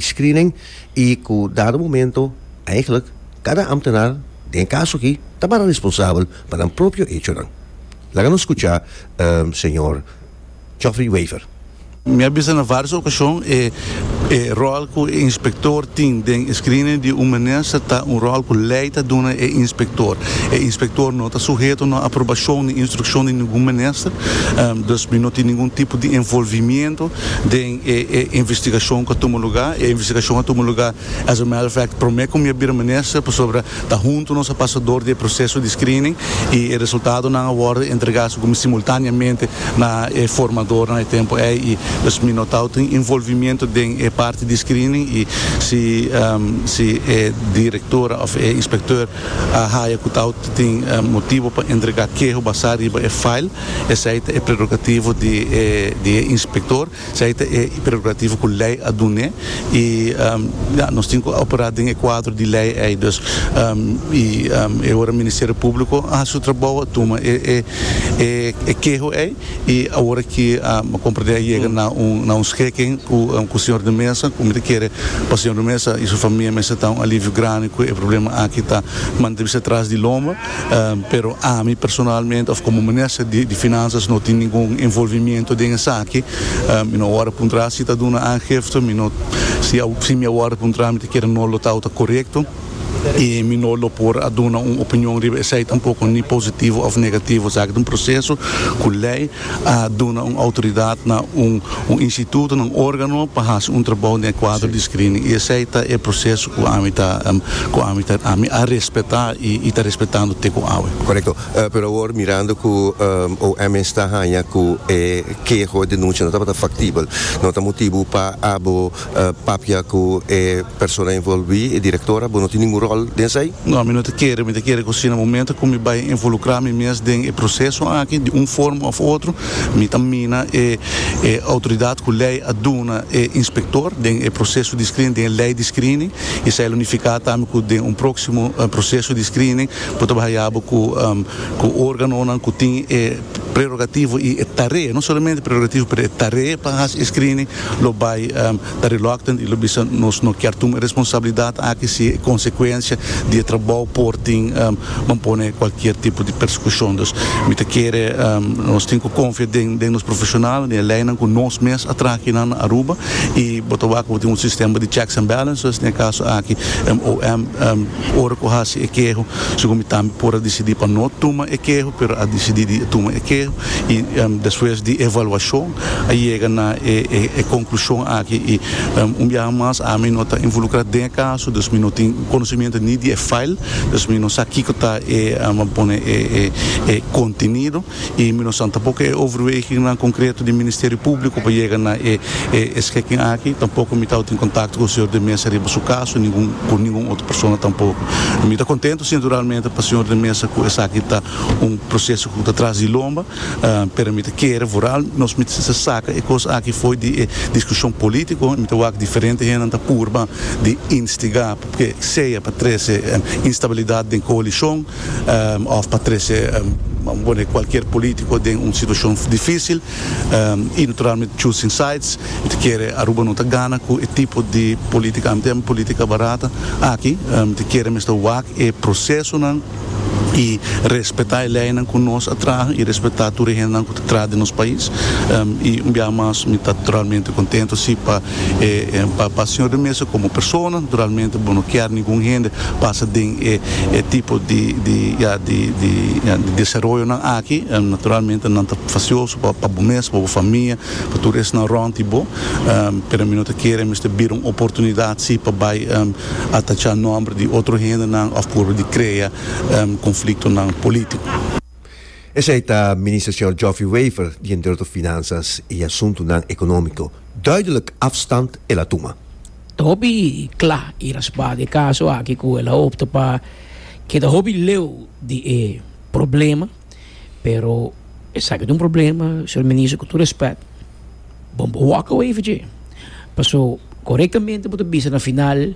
screening y cu dado momento eigenlijk cada ambtenaar den e caso aki ta para responsabel pa nan propio hechonan. Laga nos scucha señor Geoffrey Wever. Mi a bisa na varios ocasion e e rol cu e inspector tin den e screening di un minister ta un rol cu ley ta duna e inspector. E inspector no ta suheto na aprobacion ni instruccion di ningun minister, dus mi no tin ningun tipo di envolvimiento den. E e investigashon ku a tuma lugá, e investigashon a tuma lugá, as a matter of fact, promé ku mi a bira minister pasobra ta huntu nos a pasa dor di e proseso di screening i e resultadonan a wòrdu entregá so komo simultáneamente na e formadornan e tempu ei i dus mi no tau tin envolvimiento den e parti di screening i si si e direktora òf e inspektè. a haya cu ta auto tin motibo pa entrega keho basá riba e file, esei ta e prerogativo di e di e inspector, esei ta e prerogativo cu ley a dun'e y ya, nos tin cu operá den e cuadro di ley ei, dus y e ora Ministerio Publico a haci su trabou a tuma e e keho ei. Y awor aki mi comprende a yega na un scheken cu señor de mesa cu mi ta kere pa señor de mesa y su famia mester ta un alivio grandi cu e problema aki ta manda bisa tras di loma pero ami personalmente of como minister di finanzas no tin ningun envolvimiento den esaki mi no awor a puntra si ta duna aangifte si mi awor a puntra mi ta kere no lo tau ta corecto. y mi no lo por a duna un opinion riba esey tampoco ni positivo of negativo sa aki ta un proceso cu ley a duna un autoridad na un un instituto na un organo pa haci un trabao den e cuadro di screening y esey ta e proceso cu ami ta cu ami ta ami a respeta y y ta respetando te cu awe. Correcto, pero awor mirando cu OMS ta haya cu e keho, e denuncia no tabata factibel no ta motibu pa abo papia ku e persona envolví, e direktora, bo no tin ningun ròl den esei? No, mi no ta kere, mi ta kere ku si na momentu ku mi bai envolukrá mi mes den e proseso aki di un forma òf otro, mi ta mina e e outoridat ku lei a duna e inspektor den e proseso di screening, den e lei di screening, i esei lo nifiká tambe ku den un próksimo proseso di screening bo ta bai haya bo ku organonan ku tin e. prerogativo i e tarea, no solamente prerogativo pero e tarea pa hasi e screening lo bai ta reluctant i lo bisa nos no kier tuma e responsabilidad aki si e consecuencia di e trabou por tin ban pone cualkier tipo di persecucion. Dus mi ta kere nos tin ku konfia den den nos profesional, den e leinan ku nos mes a traha kinan na Aruba i bo ta wak ku bo tin un sistema di checks and balances, den e kaso aki MOM. Ora ku a hasi e keho, su gumi tambe por a disidí pa no tuma e keho, pero a disidí di tuma e keho i despues di evaluashon a yega na e konklushon aki. I un biaha mas ami no ta involukrá den e kaso, dus mi no tin konosementu ni di e fail, dus mi no sa kiko ta e, pone e kontenido. y mi no sa tampoco e overwegingnan concreto di Ministerio Publico pa yega na e e schikking aki, tampoco mi tawata en contacto cu Señor de Mesa riba su caso ni cu cu ningun otro persona tampoco. Mi ta contento si naturalmente pa Señor de Mesa cu esaki ta un proceso cu ta tras di lomba, pero mi ta kere vooral nos mi ta saca e cos aki fo'i di e discusion politico, mi ta wak diferente hendenan ta purba di instiga pa ke sea pa trece instabilidad den coalition. òf pa trese pone kualkier polítiko den un situashon difísil i naturalmente choosing sides mi ta kere Aruba no ta gana ku e tipo di polítika ami ta yama polítika barata aki mi ta kere mester wak e prosesonan i respetá e leinan ku nos a traha i respetá tur e hendenan ku ta. Traha den nos pais y un biaha mas mi ta realmente contento si pa pa Señor de mesa como persona realmente bo no kier ningun hende pasa den e tipo di di ya di di desaroyonan aki naturalmente nan ta facioso pa pa bo mes pa bo famia pa tur esnan rond di bo pero mi no ta kere mester bira un oportunidad si pa bay atacha nomber di otro hendenan of por di crea conflictonan politico. Esei ta Minister Señor Geoffrey Wever di Enderoto Finansas i Asuntunan Economico. Duidelijk afstand el a tuma. Ta hopi cla i raspa di e caso aki cu el a opta pa keda hopi leu di e problema. Pero esaki ta un problema, Señor Minister, cu tur respect, bo no walk away for dje. Paso corectamente bo ta bisa na final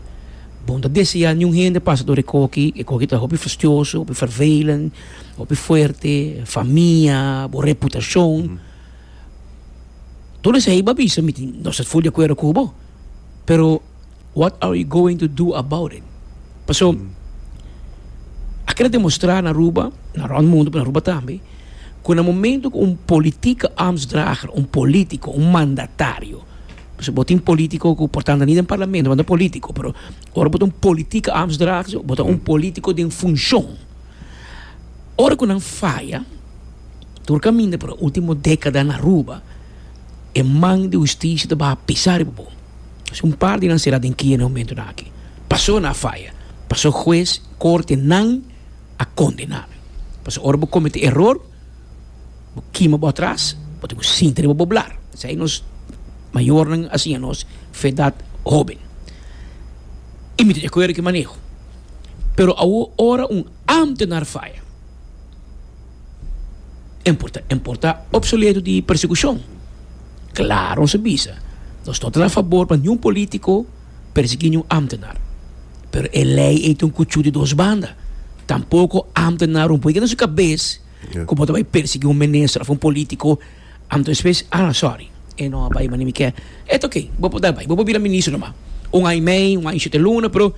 bo no ta desea niun hende pasa tur e coki, e coki ta hopi fastioso, hopi vervelend. hopi fuerte, famia, bo reputacion. Todo esei bo a bisa mi tin, nos ta full di acuerdo cu bo. Pero what are you going to do about it? Paso a kere demostra na Aruba, na rond mundo, pero na Aruba tambe, cu na momento cu un politieke ambtsdrager, un politico, un mandatario, pasobra bo tin politico cu por tanda ni den parlamento, bo no politico, pero ora bo ta un politieke ambtsdrager, bo ta un politico den funcion. Ora cu nan faya, tur caminda pa e ultimo decada na Aruba, e man di husticia ta baha pisa riba bo. Asina un par di nan cera den kia na e momento nan aki. Pasobra nan a faya, pasobra huez, corte nan a condena nan. Pasobra ora bo comete eror, bo kima bo atras, bo tin cu sinti riba bo blar. Esei nos mayornan a siña nos fe edad hoben. Y mi ta di acuerdo cu e maneho. pero awor ora un ámtenar faya, e por ta e por ta opsoleto di persekushon. Klaru nos a bisa, nos no ta na fabor pa niun polítiko persiguí niun ámtenar, pero e lei ei ta un kuchú di dos banda, tampoko ámtenar un puegina su kabes ku bo ta bai persiguí un minister òf un polítiko, ah sòri e no a bai manera mi ke, et ok bo por dal bai, bo por bira minister nòmá un aña i mei, un aña i shete luna pero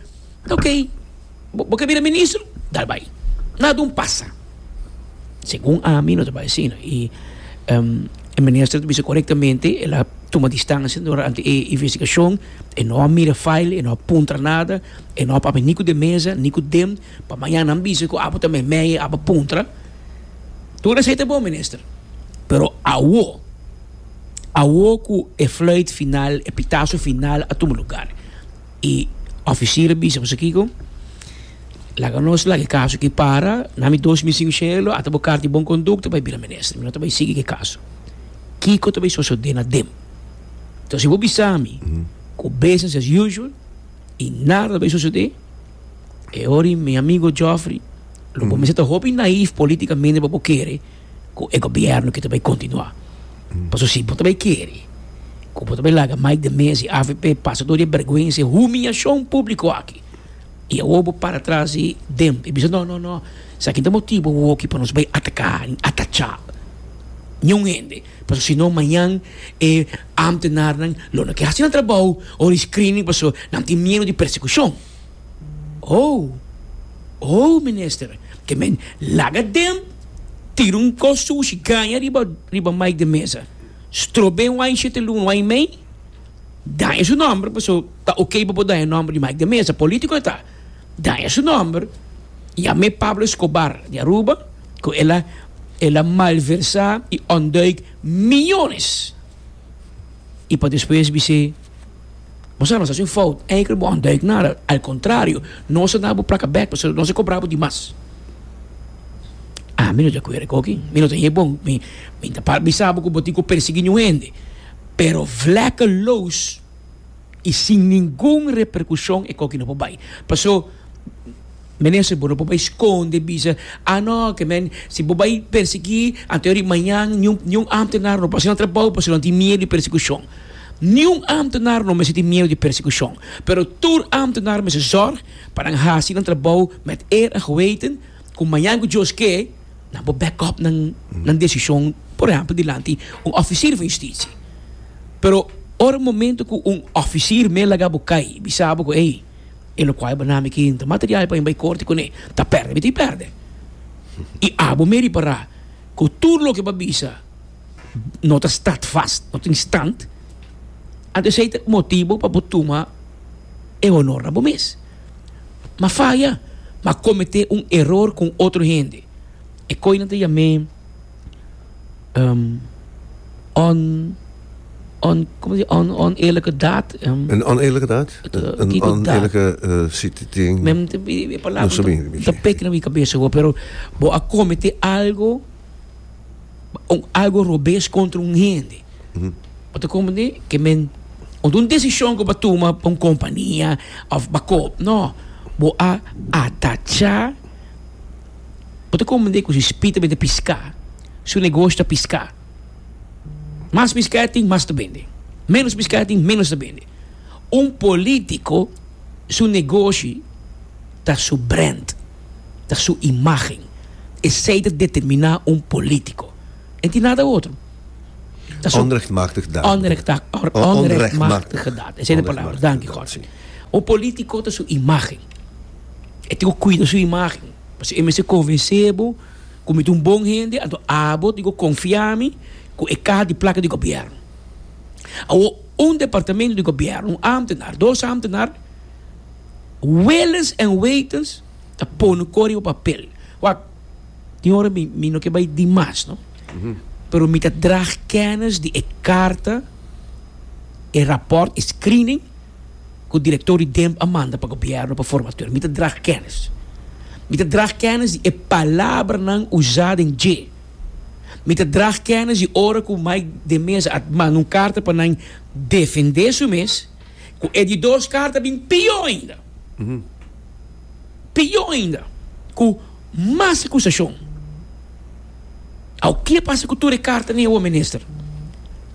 Ok, bo ke bira ministro? Dal bai. Na dun pasa. Segun ami, no ta bai asina. I e minister ta bisa korektamente, el a tuma distansia durante e investigashon, e no a mira file, e no a puntra nada, e no a papia ni ku den mesa, ni ku dem, pa mañana nan bisa ku abo ta meimei, abo a puntra. Tur esei ta bon, minister. Pero awo, awo ku e fluit final, e pitasu final a tuma lugar, E oficier a bisa boso kiko? Laga nos laga e caso aki para, na mi dos mi sin cielo, ata bo carta di bon conducta pa e bira minister, mi no ta bay sigui cu e caso. Kiko ta bay sosode na dem? Enton si bo bisami cu business as usual y nada ta bay sosode, e ora mi amigo Geoffrey, lo bo mester ta hopi naive politicamente pa bo kere, ku e gobièrnu ke ta bai kontinuá. Paso si bo ta bai kere ku bo ta bai laga Mike de Mez i avp pasa dor di e bèrgwensa, e humiashon públiko aki, i awor bo para tras di dem i bisa no, no, no, esaki ta motibu awor ki pa nos bai ataká i atachá niun hende, paso si no mañan e ámtenarnan lo na ke hasi nan trabou ora e screening paso nan tin miedu di persekushon. Ow! Ow, minister! Ke men laga den, tira un kos sushi gaña riba riba Mike den mesa. Strobé un wain shete luna, un wain mei. Daña su nòmber, paso ta okey pa bo daña nòmber di Mike den mesa. Polítiko e ta. Daña su nòmber. Yam'é Pablo Escobar di Aruba, ku el a el a malversá i ònduik miónes. I pa despues bis'é. Nos a nos haci un fout, eiker bo a ontduik nada, al contrario, nos a dabo placa bek pasobra nos a cobrabo di mas. Ami no djacuerdo cu aki, mi no ta e bon, mi ta para bisabo cu bo tin cu persegui niun hende, pero vlekkeloos y sin ningun repercusion e coki no por bay, paso. Minister, bo no por bai skonde bisa, ah no, ke men si bo bai persiguí anto yari mañan niun niun ámtenar no por hasi nan trabou pasobra nan tin miedu di persekushon. Niun ámtenar no mester tin miedu di persekushon, pero tur ámtenar mester zòrg pa nan hasi nan trabou met eer en geweten ku mañan ku Dios ke nan por back up nan nan desishon, por ehèmpel dilanti un òfisir van Yustisia. Pero ora momento ku un òfisir mei laga bo kai i bisa bo ku ei, E lo kuai banami e kinta material pa mi bai korti kuné. Ta pèrdè mi ta e pèrdè. I abo mi a ripará ku tur loke bo a bisa no ta stadfast, no tin stand, anto esei ta motibu pa bo tuma e honor na bo mes. Mi a faya, mi a kometé un eror ku un otro hende. E koinan ta yam'é. oneerlijke daad. Een oneerlijke daad? Een oneerlijke sitting? Mim ta e palabra no sabi mi ta pek na mi cabeza awor pero bo a comete algo algo robes contra un hende bo ta comprende que men ot un decision cu bo a tuma pa un compania of bakop no bo a atacha Bo ta comprendé cu si Spita bende piscá, su negoshi ta piscá. Mas piscá e tin, mas ta bende. Ménos piscá e tin, ménos ta bende. Un politico su negoshi ta su brand, ta su imagen. Esey ta determiná un politico. E tin nada otro. Ta su. Onrechtmachtig daad. Onrechtmachtig daad. Esey ta e palabra. Danki, Jorge. Un politico ta su imagen. E tin ku kuida su imágen, pasobra e mester konvensé bo ku mi ta un bon hende, anto abo tin ku konfiá mi ku e kaha di plaka di gobièrnu. Awor, un departamentu di gobièrnu, un ámtenar, dos ámtenar, wèlens èn wetens ta pone kor riba papel. Wak, tin ora mi, mi no ke bai di mas, no, pero mi ta dra kènis di e karta, e rapòrt, e screening. ku direktor di Demb a manda pa gobièrnu pa formatur. Mi ta drag kènis. Mi ta drag kènis di e palabranan usá den dje. Mi ta drag kènis di ora ku Mike de Meza a manda un karta pa nan defendé su mes, ku e di dos karta bin pió ainda. Pió ainda, ku mas akusashon. Awo, ke pasa ku tur e kartanan awor, minister?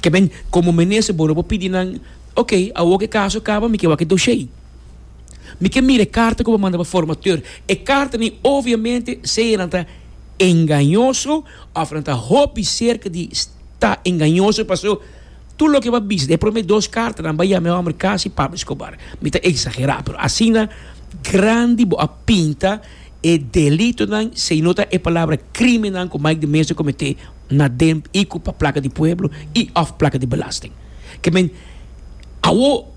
Ke men, komo minister, bo no por pidi nan. Ok, awor cu e caso caba mi ke wak e doshey. Mi ke mira e carta cu bo manda pa formateur. E carta ni obviamente sea nan ta engañoso of nan ta hopi cerca di ta engañoso paso tur loke bo a bisa den e prome dos carta nan bay yama e homber casi Pablo Escobar. Mi ta exagera pero asina grandi bo a pinta e delito nan si no ta e palabra crimen nan cu Mike de Meza comete na den y cu pa placa di pueblo y of placa di belasting. Ke men, awor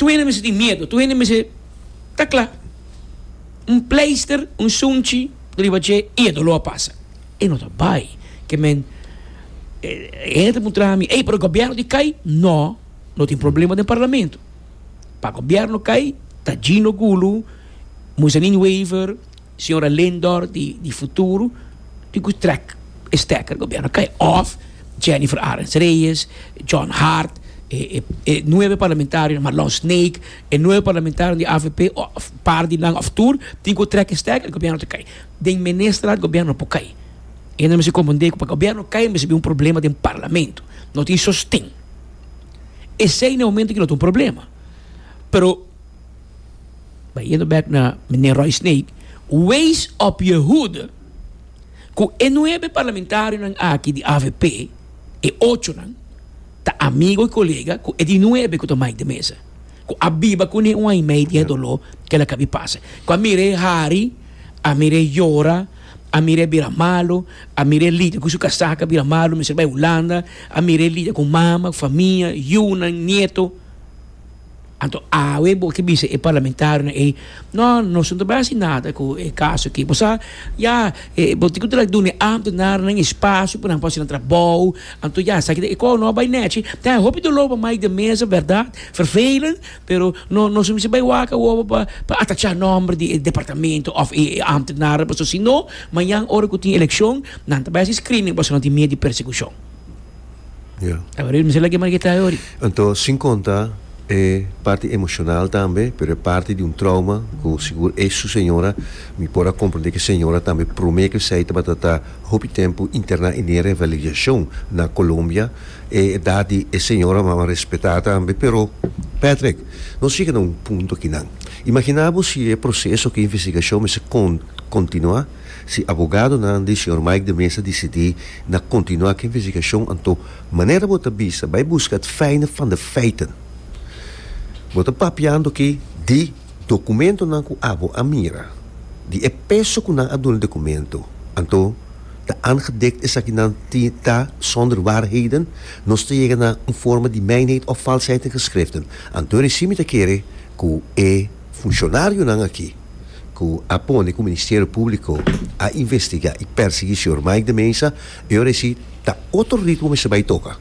tur hende mester tin miedu, tur hende mester ta kla, un pleister, un sunchi riba dje i e doló a pasa. E no ta bai. Ke men, e hende ta puntra mi, ey, pero e gobièrnu di kai? No, no tin problema den parlamentu. Pa gobièrnu kai ta Gino Gulu, Muzanin Wever. Señora Lindor di di futuro di cu trek e stekker gobierno cay of Jennifer Arends Reyes, John Hart, e e e nueve parlamentarionan Marlon Snake, e nueve parlamentarionan di avp of par di nan of tur tin cu trek e stekker gobierno ta cay. Den menestraat gobierno no por cay. E nan mester comprende cu pa gobierno cay mester habi un problema den parlamento. No tin sosten. Esey na e momento cu no ta un problema pero. Bay yendo back na meneer Roy Sneek. Wees op je hoede cu e nuebe parlamentarionan aki di avp, e ochonan, ta amigo y colega cu e di nuebe cu ta Mike de Meza, cu a biba cune un aña y medio di e dolor cu el a cabi pasa. Cu a mira e hari, a mira e yora, a mira e bira malo, a mira e lida cu su casaca a bira malo, a mester bay Hulanda, a mira e lida cu mama, famia, yunan, nieto. Anto awe bo a ke bisa e parlamentarionan ei, No, nos no ta bai hasi nada ku e kaso aki. Bo sa, ya, e, bo tin ku traha duna e ambtenarenan espasio pa nan por hasi nan trabou. Anto ya, esaki ta e kos no a bai nèchi. Ta e hopi doló pa mai den mesa, bèrdat, vervelend, pero no, nos no mester bai waka wowo pa, pa atachá nòmber di e departamento òf e ambtenaren, pasobra si no, mañan ora ku tin elekshon, nan ta bai hasi screening pasobra nan tin mier di persekushon. Yeah. Abrir mi sala que mar kita ori. Anto sin conta e parti emocional tambe, pero e parti di un trauma cu sigur e su señora, mi por a comprende que señora tambe prome que esey tabata ta hopi tempo interna en e revalidacion na Colombia, e edad di e señora mama respeta tambe, pero Patrick, nos yega na un punto aki nan. Imagina bo si e proceso aki investigacion mester con continua. Si abogadonan di señor Mike de Meza disidí na kontinuá ku e investigashon anto manera bo ta bisa bai buska het fijne van de feiten. Bo ta papiando aki di dokumentonan ku abo a mira, di e peso ku nan a duna e dokumento. Anto ta aangedekt esaki nan ti ta zonder waarheden, nos ta yega na un vorme di mijnheid of valsheid in geschriften. Anto recién mi ta kere ku e. Funcionarionan aki cu a pone cu Ministerio Publico a investiga y persegui señor Mike de Meza, e yo reci ta otro ritmo mester bay toca.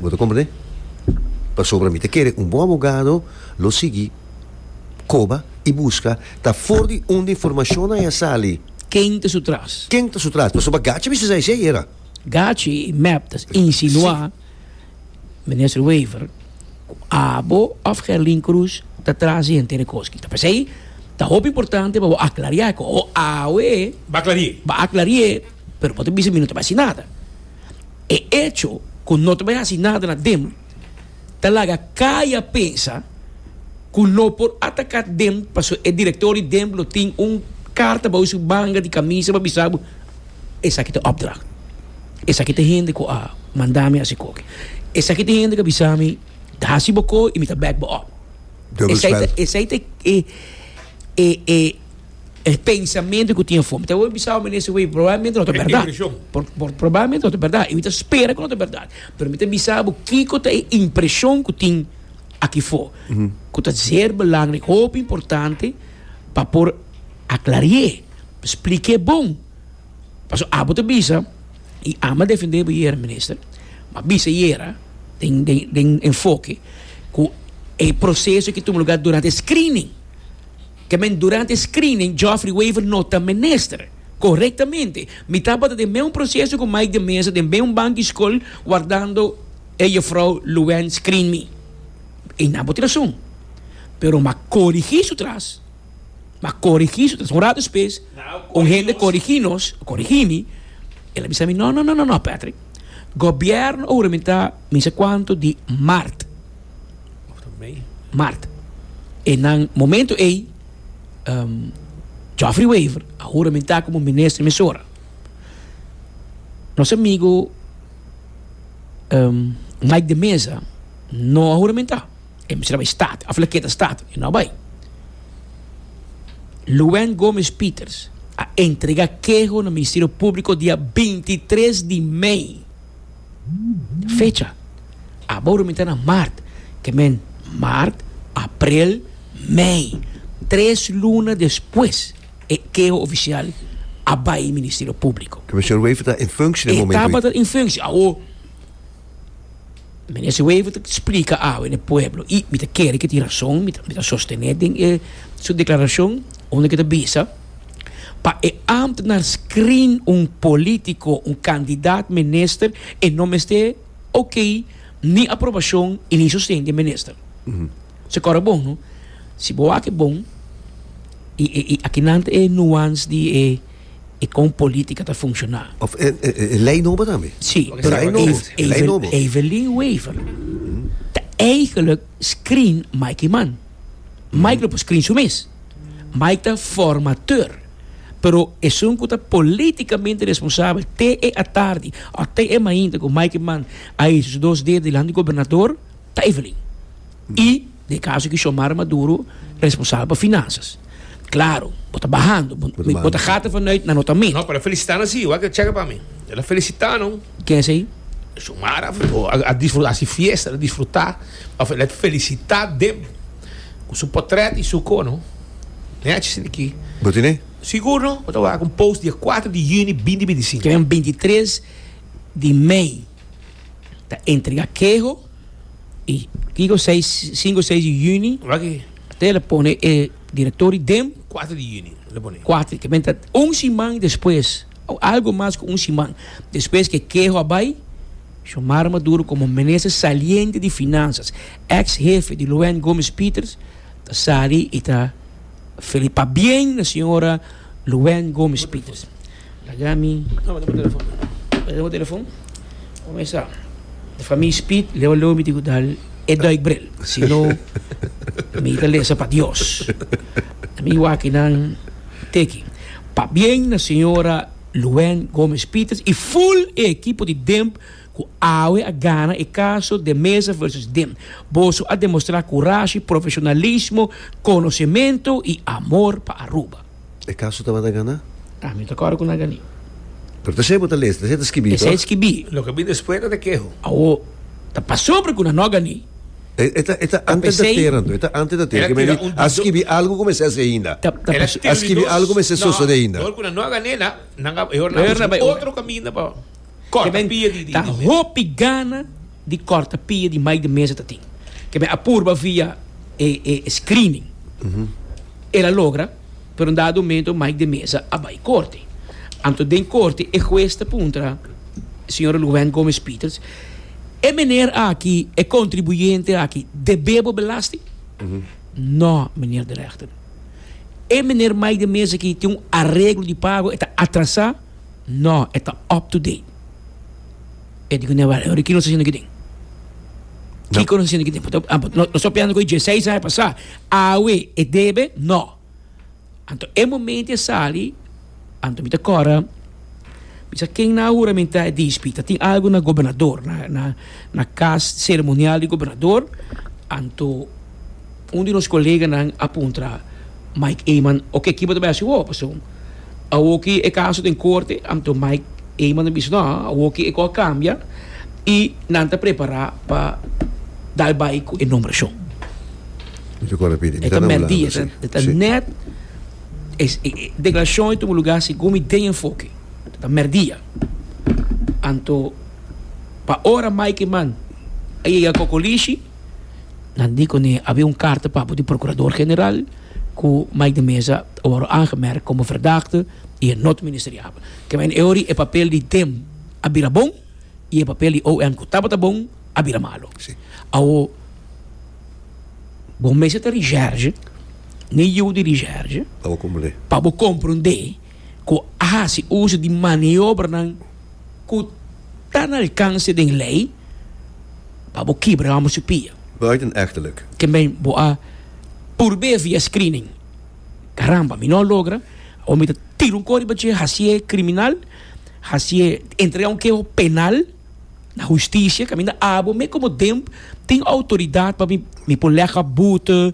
Bo ta comprende? Pasobra mi ta kere un bon abogado lo sigui coba y busca ta for di unda informacionnan ya sali. Ken ta su tras? Ken ta su tras? Pasobra Gachi a bisa sa esey era. Gachi y mep ta insinua Minister Wever, cu abo of Gerlin Croes ta tras di henter e cos ki ta pasey, ta hopi importante pa bo aclaria e cos, o awe Ba clarie. ba aclarie, pero bo ta bisa mi no ta bay haci nada. E hecho cu no ta bay haci nada na dem ta laga caya pensa cu no por ataca dem pasobra e director di dem lo tin un carta bou su manga di camisa pa bisa bo, Esaki ta opdracht. Esaki ta hende ku a manda mi hasi koki. Esaki ta hende ku a bisa mi, Hasi bo ko i mi ta bèk bo op. Esei ta e pensamentu ku tin afó. Mi ta wòrdu bisa awor menestra, wei, probablemente no ta bèrdat. Probablemente no ta bèrdat. I mi ta spera ku no ta bèrdat. Pero mi ta bisa bo kiko ta e impreshon ku tin aki afó, ku ta ser belangrik, hopi importante pa por. Aklarié, splik'é bon. Pasobra abo ta bisa, i ama defendé bo yera, Minister, ma bisa yera den den den enfoke ku e proseso ke tuma lugá durante e screening. Ke men durante e screening Geoffrey Wever no ta minister korektamente. Mi tabata den mesun proseso ku Mike de Meza den mesun bank di skol wardando e Jefrouw Louwèn screen mi. I nan bo tin rason. Pero mi a korigí su tras. m'a corigi su tres un rato despues un hende corigi nos corigi mi el a bisa mi no no no no Patrick gobierno a huramentá mi sa cuanto di maart maart e nan momento ey Geoffrey Wever a huramentá como minister di mesora nos amigo Mike de Meza no a huramentá. E mester a bai staat. Of e keda staat. E no bai. Luen Gomes Pieters a entrega keho na Ministerio Publico dia bintitres di mei. Fecha abo ora mi ta na mart. Ke men mart, aprel, mei. Tres luna despues e keho ofisial a bai Ministerio Publico. Commissioner Wever ta in functie den momento ei? E tabata in functie. Awo. Minister Wever ta splika awe na e pueblo y mi ta kere cu tin razon, mi ta, mi ta sostene den e su declaracion unda ke ta bisa, pa e ambtnar screen un politico, un candidaat minister, e no mester ok, ni aprobacion y ni sosten di e minister. So kor a bon, no? Si bo wak e bon, y, y, y akinan ta e nuance di e. y con politica ta funciona. Of e e ley nobo tambe? Si, pero Evelyn Wever ta eigenlijk screen Mikey man. Mike lo por screen su mes. Mike ta formateur. Pero esun cu ta politicamente responsabel te e atardi of te e mainta cu Mikey man a hisi su dos dedo dilanti di gobernador ta Evelyn. Y. Na e kaso di Xiomara Maduro, responsabel pa finansas. Klaro, bo ta bahando. Bo ta bahando. Bo ta gata vanuit na nota meta. No, pero felicitá nan si, wak e chèke pa mi. El a felicitá nan. Ken esei? Xiomara a disfrutá si fiesta, el a disfrutá. Òf el a felicitá dem ku su potrèt i su ko, no? Nèchis in aki. Bo tin ei? Sigur, no. Bo ta wak un post dia kuater di yüni binti binti sinku. Ken beintitres di mei. ta entrega keho y kico seis cinco y seis di juni Waki. te lo pone e directory den 4 di juni lo pone. cuatro que menta un siman despues o algo mas cu un siman despues que keho a bay Xiomara Maduro como minister saliente di finanzas ex hefe di Louent Gomes Peters ta sali y ta feli pabien na señora Louent Gomes Peters. Laga mi ta bata bo telefon. Bata bo telefon. Kumesa. Di for mi speed, lew lew mi tin ku dal e duikbril. Si no, mi ta lesa pa Dios. Na mi wakinan teken. Pabien na señora Luwen Gomez Peters i ful e ekipo di Demb ku awe a gana e kaso De Meza versus Demb. Boso a demostrá kurashi, profeshonalismo, konosementu i amor pa Aruba. E kaso tabata ganá? Ta, mi ta kòrda ku nan ganí. Pero ta esei bo ta lesa, ta esei ta skibí, tòg? Esei ta skibí. Loke bini despues nan ta keho. Awo, ta pasobra ku nan no ganí. E e ta e ta ante ta tera anto, e ta ante ta tera, ke meni a skibí algu ku mester hasi ainda. Ta ta pasobra. A skibí algu ku mester sosodé ainda. Dor ku nan no a gané nan, nan a e hora nan a busca otro kaminda pa. Corta pia di mes. Ta hopi gana di corta pia di mai di mes ta tin. Kebe a purba via e e screening. El a logra pero un dado momento mai di mes a bai corte. Anto den corte e huez ta puntra señora Luwen Gomez Peters, e meneer aki, e contribuyente aki debe bo belasting? No meneer de rechter. E meneer mai di mes aki tin un areglo di pago e ta atrasa. No, e ta up-to-date. E di ku ne wèl, Ricky nos ta hasiendo aki den? Kiko nos ta hasiendo aki den? Pasobra amper nos ta operando ku e dieseis aña pasá. Awe e debe? No. Anto e momento e sali, anto mi ta kòrda, mi sa ken na huramentá e dispi. Ta tin algu na gobernador, na, na, na kas seremonial di gobernador, anto. Un di nos koleganan a puntra Mike Eman, Oke, kiba ta bai hasi awor? Pasobra awor ki e kaso ta den korte, anto Mike Eman a bisa, No, awor ki e kos a kambia i nan ta prepará pa dal bai ku e nombrashon. E ta mèrdí, e ta nèt e deklarashon a tuma lugá segun mi den enfoke, e ta mèrdí. Anto pa ora Mike Eman a yega kokolishi. Nan di cu ne habia un carta papel di Procurador General cu Mike de Meza a worde aangemerk como verdachte y e no ta ministeriabel. Kema en e ori e papel di dem a bira bon y e papel di OM cu tabata bon a bira malo. Awo bo mester ta recherche na e yiu di recherche pa bo compra un de. ku a hasi uso di maniobranan ku ta na alkanse den lei pa bo kibra amo su pia. Buitenechterlijk. También bo a purbe via screening. Caramba, mi no a logra, awor mi ta tira un kor riba dje hasié criminal, hasié entrega un keho penal na husticia, caminda abo me como DEMP tin autoridad pa mi por lek a boete,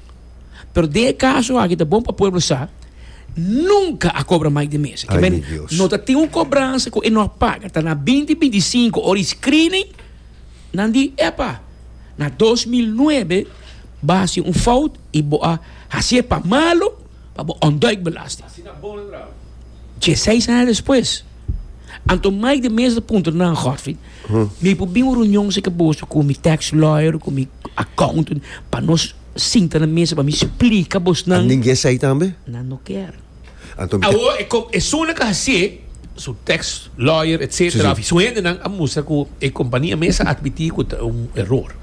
Pero den e kaso aki ta bon pa pueblo sa, nunka a kobra mais den mes. Ay mi Dios. No ta tin un kobransa ku e no a paga, ta na binti binti sinku ora e screening, nan di epa, na dos mil nuebe bo a hasi un fout i bo a hasié pa malo, pa bo ontduik belasting. Dieseis aña despues, anto Mike de Meza ta puntra nan, Godfried, mi por bin un reunion si ke boso ku mi tax lawyer, ku mi accountant, pa nos sinta na mesa pa mi splika bosnan. An dingé esei tambe? Nan no ker. Anto mi ta. Awor e kom, e sona ke hasié, su tax lawyer, etcetera, of su hendenan a mustra ku e kompania mesa a admití ku ta un eror.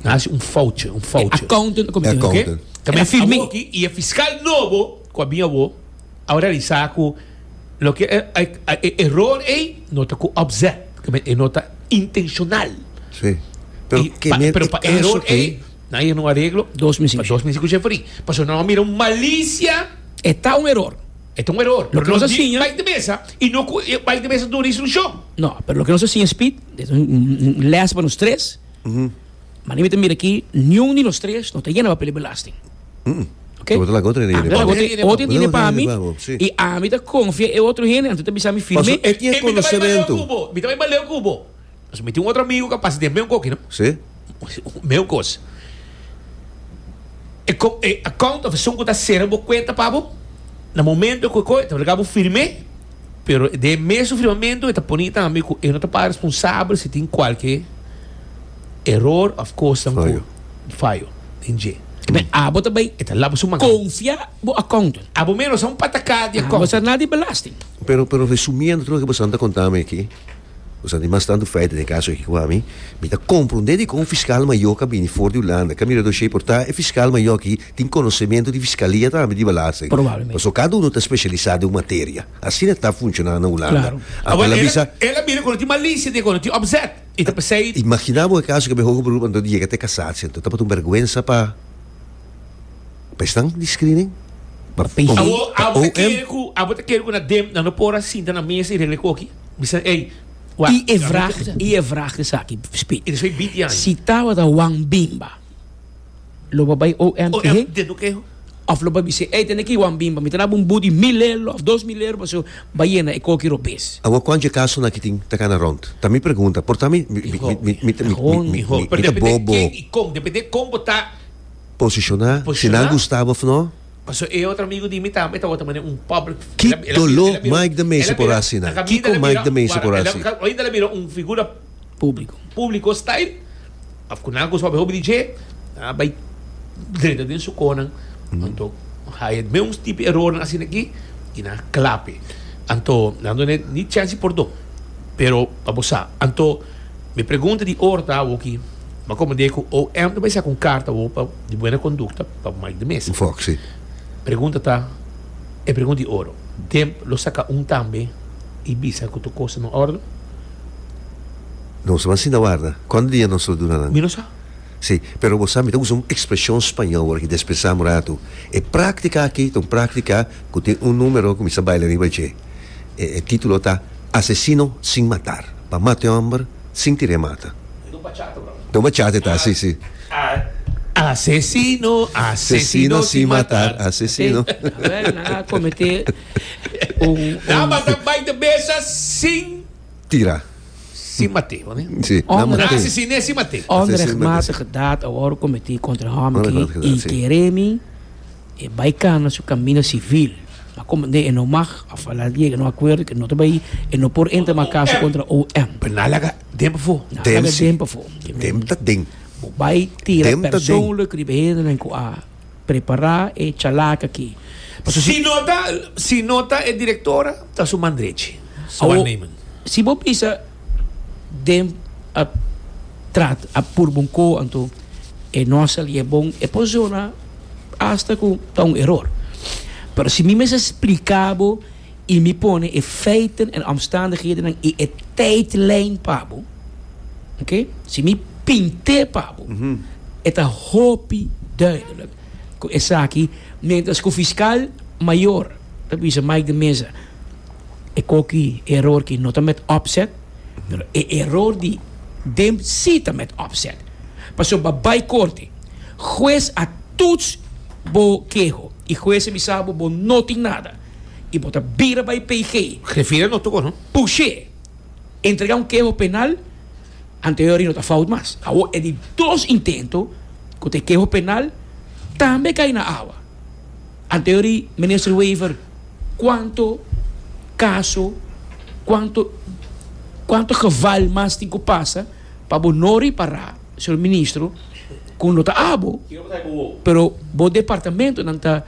Nan hasi un foutje, un foutje. E accountant a kometé un ke? Ta bien firme. Awor ki i e fiskal nobo ku a bin awor a realisá ku loke e eror ei no ta ku opzet, pasobra e no ta intenshonal. Si, pero kende e kaso ei. Eror ei nan yer un areglo pa dos mes i kushia for i. Pasobra nan lo mira un malisia. E ta un eror. E ta un eror, pero nos a siña. Bai te mesa i no ku e bai te mesa duna e solushon. No, pero loke nos a siña Speed, un lès pa nos tres. Mane mi ta mira ki niun di nos tres no ta yena papel di belasting. Okay? Otro lago tiene dinero. Otro lago otro tiene pa mi y a mi ta confia e otro hende anto ta bisa mi firme. Paso e tiene conocimiento. Mi ta bai baleo cu bo. Paso mi tin un otro amigo cu a pasa den meun coki, no? Sí. Meun cos. E co e account of esun cu ta cera bo cuenta pa bo na momento cu co e ta obliga bo firme pero den mesun firmamento e ta poni tambe cu e no ta para responsable si tin cualke eror of cosnan cu fayo den dje. Enben abo ta bay e ta laba su man. Confia bo accountant. Abo mero sa un patacá di accountant. Abo sa na di belasting. Pero pero resumiendo tur loke boso ta conta mi aki, boso tin mas tanto feiten den e caso aki cu ami, mi ta comprende dicon un fiscal mayor ca bini for di Hulanda ca mira doshey por ta e fiscal mayor aki tin conocemento di fiscalia tambe di belasting. Probablemente. Paso cada uno ta specialisa den un materia. Asina ta funciona na Hulanda. Claro. Abo el a bisa. El a mira cu no tin malicia den cu no tin opzet. i ta p'esei. Imaginá bo e kaso kende hoga bruha anto di yega te kasatsi anto ta pasobra un bèrgwensa pa pa esnan di screening? Pa pi. Awo abo ta kere ku abo ta kere ku na den nan no por a sinta na mesa i regla ekoki? Mi sa ey wak I e vraag i e vraag esaki Speed. I despues bitian. Si tabata Wan Bimba. Lo bo bai OM te he òf lo bo bis'é, ey tene ki wan bin pa mi ta daba un bou di mil euro òf dos mil euro pasobra bai yena e koki robes. Awa kònchi e kasonan ki tin ta kana rònt? Ta mi pregunta, por ta mi ta bobo posishoná si nan gusta bo òf no? Ki doló Mike de Mesa por a hasi nan? Kiko Mike de Mesa por a hasi? públiko. Públiko style of ku nan ku so bai hopi di dje a bai drenta den su konan anto haye meus tipo erornan asina aki i nan a klape anto nan done ni chansi pordon pero pa bo sa anto mi pregunta di ora ta awoki bo a komprende ku OM ta bai saka un karta bo pa di buena kondukta pa bo mai di mesa Fox si pregunta ta e pregunta di oro demp lo saka un tambe i bisa ku tur kos ta na ordo. Nos lo asina warda. Konta dia nos lo duna nan? Mi no sa. Sí, pero bo sa mi ta usa un ekspreshon spañó ora ki despresá un ratu. E práktika akí ta un práktika ku tin un número ku mi sa baila riba dje. E e título ta, Asesino sin matar. Pa mata e hòmber sin tira e mata. Ta un bachata ora. Ta un bachata e ta, sí, sí. Asesino, asesino sin matar, asesino. Aver nan a kometé un, un... Daba ta bai te besa sin... Tira. Sin mate, mane? Si, na mate. Na asesine sin mate. Onrechtmatige daad a wòrdu kometí kontra hòmke i kere mi e bai kana su kamino sivil. Ma komo e no mag òf a laat yega na un akuerdo ku e no ta bai, e no por entra mas kaso kontra OM. Pero na laga den pafó. Na laga den pafó. Den ta den. Bo bai tira persoonlijk riba hendenan ku a. Prepará e chalaka aki. Si no ta, si no ta e direktora, ta su man drechi. Su waarnemen. Si bo bisa den a trat, a purba un ko anto e no a sali e bon, e por zona hasta ku ta un eror. Pero si mi mester splika bo. I mi pone e feiten en omstandighedennan i e tydlijn pa bo. Oké, si mi pint'é pa bo, e ta hopi duidelijk ku esaki miéntras ku fiskal mayor ta bisa Mike de Meza e koki e eror ki no ta met opzet, pero e eror di den si ta met opzet. Pasobra bai korte, hues a tuts bo keho i hues a bisa bo bo no tin nada. y bo ta bira bay PG. Refira no toco no. Pushe entrega un keho penal anterior y no ta fout mas. Awor e di dos intento cu ta e keho penal tambe cay na awa. Anterior y Minister Wever cuanto caso, cuanto cuanto geval mas tin cu pasa pa bo no repara Señor Ministro cu no ta abo pero bo departamento nan ta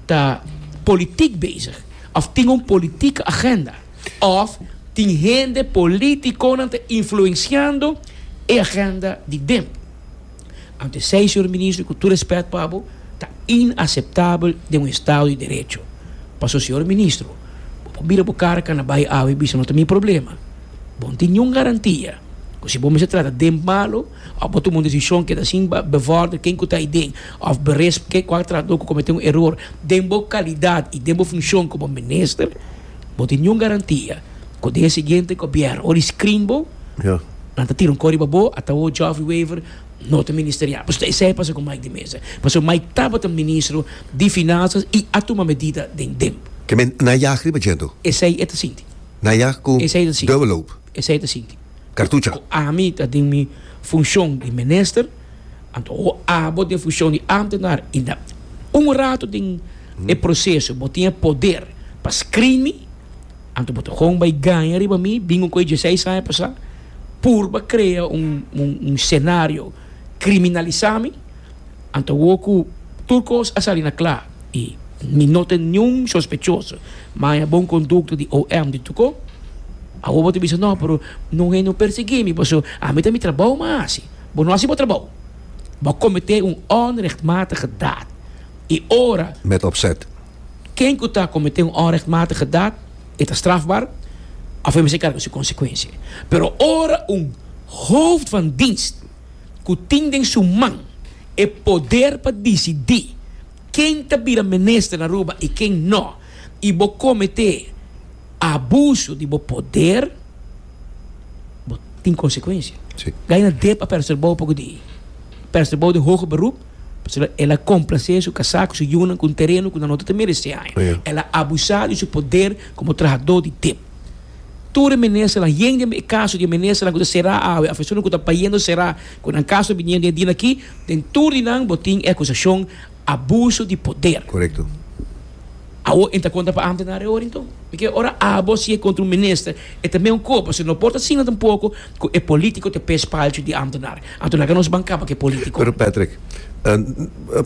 ta politic bezig of tin un politieke agenda of tin hende politiconan ta influenciando e agenda di den. Ant esey, señor Ministro, y cu tur respet pa bo, ta inaceptabel den un estado di derecho. Paso, señor Ministro, bo por bira bo cara cana bay awe y bisa no ta mi problema. Bo no tin niun garantia cu si bo mester trata den malo, Òf bo tuma un desishon ke ta sin bevòrder ken ku ta ei den, òf berisp ke ku a trata bo ku komete un eror den bo kalidat i den bo funshon komo minister, bo tin niun garantia ku den e siguiente gobièrnu ora e skrin bo, nan ta tira un kò riba bo, ata bo Geoffrey Wever no ta ministerial. Pasobra esei a pasa ku Mike di mesa. Pasobra Mike tabata ministro di Finansas i a tuma medida den tempu. Ke men na yag riba djento. Esei e ta sinti. Na yag ku dòbel hoop. Esei ta sinti. Ku ami ta den mi funshon di minister, anto o abo den funshon di amtenar i na un ratu den e proseso bo tin e poder pa screen mi, anto bo ta kon bai gaña riba mi, bingo ku e dieseis aña pasá, purba krea un senario kriminalisá mi. Anto wou ku tur kos a sali na kla i mi no ta niun sospechoso maña bon kondukto di OM di Tuko. Awor bo ta bisa no, pero no hende no persiguí mi paso ami ta mi trabou m'a hasi. Bo no hasi bo trabou. Bo a kometé un onrechtmatige daad i ora. Met opzet. Ken ku ta kometé un onrechtmatige daad e ta strafbar òf e mester karga su konsekuensia. Pero ora un hooft van dienst. ku tin den su man e poder pa disidí ken ta bira minister na Aruba i ken no, i bo kometé abuso di bo poder, bo tin konsekuensia. Sí. Gaina Depp a persa bou poco di persa bou de hoge beroep, pasobra el a complacé su casá cu su yunan cu un terreno cu nan no ta mereceaña. Ja. El a abusá di su poder como trahador di Depp. Tur e ministernan, yen den e kaso di e ministernan ku ta será awe òf esuntu ku ta bayendo será ku nan kaso biniendo e dia aki, den tur di nan bo tin e akusashon abuso di poder. Korekto. Awor e ta konta pa ámtenar e orin tur. Mi ke ora abo siña kontra un minister, e ta meun kos, pasobra no por ta asina tampoko ku e polítiko ta p'e espalcho di ámtenar. Anto laga nos ban kaba ku e polítiko. Pero Patrick,